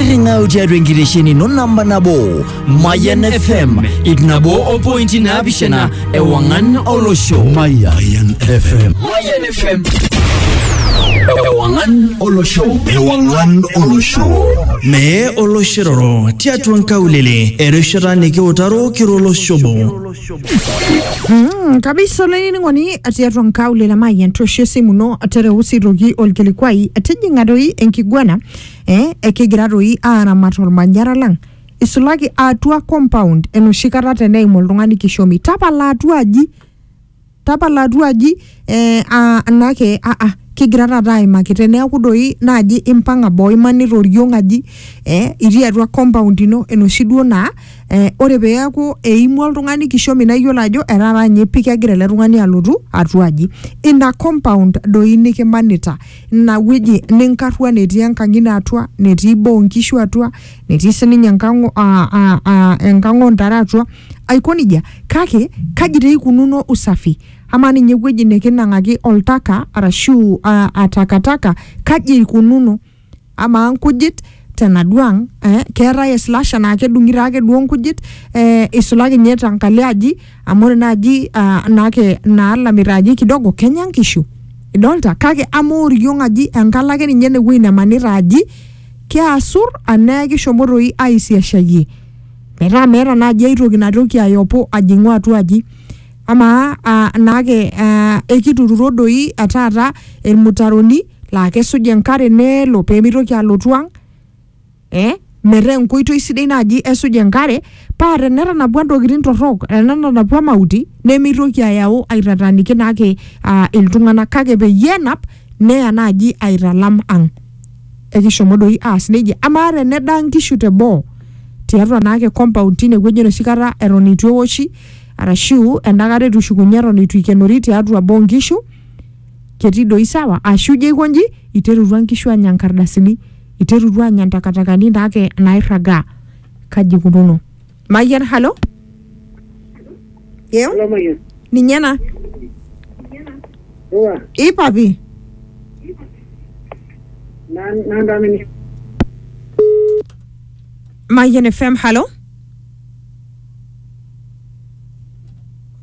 Ring'au tiatua enkitesheni ino namba nabo Mayan FM ip nabo o pointi naapishana ewang'an olosho. Mayan FM. Mayan FM. Ewang'an olosho. Ewang'an olosho. Mee oloshiroro tiatua nkaulele erishata nikiutaro kiro olosho obo. Mm, kabisa olainining'oni tiatua nkaulele mayian toosho esimu ino tereu sii toki olkilikuai tijing'a doi enkiguana eh, ekigira toi aaramat olmanyara lang isulaki atua compound enoshi kata teneim oltung'ani kishomi tapala atua aji tapala atua aji eh, ah, anake ah, ah, kigira taata aimaki teneeku doi naaji impang'a boo imanita oriong aji eh, itii atua compound ino enoshi duo naa eh, ore peeku eimua oltung'ani kishomi naa iyiolo ajo etaata ninye pii kegira ele tung'ani alotu atua aji ina compound doi nikimanita ina wueji ninkarrua netii enkang ino atua netii boo onkishu atua netii sininye enkang o- a- a- a- enkang ontare atua aiko nejia kake kaji taa ikununo usafi amaa ninye ewueji nikinang'aki oltaka arashu uh, atakataka kaji eikununo amaa nkujit tenaduo ang eh, keetae eslash anaa kedung'i taake duo nkujit eh, isulaki ninye tankalo aji amu ore naaji ah, naake naalamita aji kidogo kenya nkishu idolta kake ama oriong aji enkalo ake ninye enewueji nemanita aji keasur anaa kishomo toi aisiashayie metaa meeta naaji ai toki natoki ayopo ajing'u atua aji amaa ah, naake ah, ekitururo doi eh, taata ilmutaroni laa kesuj enkare nelo pee mitoki alotu ang eh, metaa enkoitoi sidai naaji esuj enkare paa tenetanapua intokitin torrok tenetanapua mauti nemitoki ayau aitataaniki naake uh, iltung'anak kake peyie enap neya naaji aitalam ang ekishomo doi aas nejia amaa tenedaa nkishu teboo tiatua naake compound tine wueji enoshi kata eton itu eoshi arashu endakata etushukunye eton itu ikenori tiatua boo nkishu ketii doi sawa ashu ijo aiko nji iterutua nkishu aanya nkardasini, iterutua aanya ntakatakani naake nairragaa. Kaji ikununo? Mayian, halo? Yeo? Halo Mayian. Ninye ena. Iwa, Ii papi. na- nanda mini. Mayian FM, halo?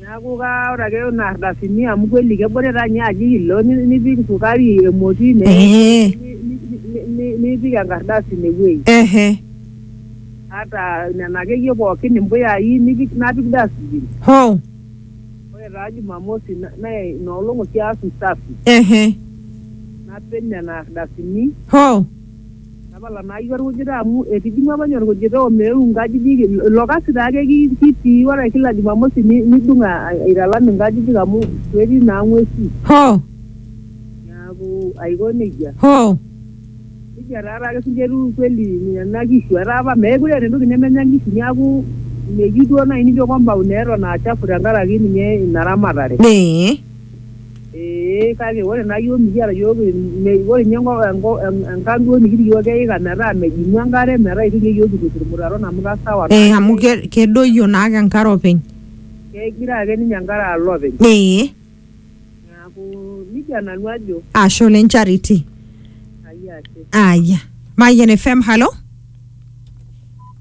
Neaku kaa ore ake ina ardasini amu kweli kebore taa ninye aji hilo ni- nipik sukari emoti ine Ee. ni- ni- ni- nipik enkardasi ine wuei Ehe. ata nena akeyie pookin impuyai nipik napik dustbin Hoo. ore taa jumamosi na- naa ina olong oshi aas usafi Ehe. napej nena ardasini Hoo. Tapala naa iyie olkujita amu etijing'ua apa ninye olkujita omeeu inkajijik, ilo kasi taa ake kitii ore kila jumamosi nidung' aitalam inkajijik amu ketii naa ng'uesi. Hoo! Neaku aiko neijia. Hoo! Neijia taa taake sii ninche etiu kweli nena kishu. Etaa apa meekure eeta entoki nemenya nkishu neaku meyieu duo naaji nijo compound eton aa chafu tenkaraki ninye ina ramatare. Ee. Ee kake ore naa iyiook mikiata iyiook ore ninye enkang duo nikitii iyiook keika metaa mejingu enkare metaa itu ninye iyiook kitur irmutaron amu kasawa naa. Ee amu kedoyio naake enkare openy. Kegira ake ninye enkare alo openy. Ee. Neeku nejia nanu ajo. Ashe oleng Charity. Ai ashe. Aya. Mayian FM, halo.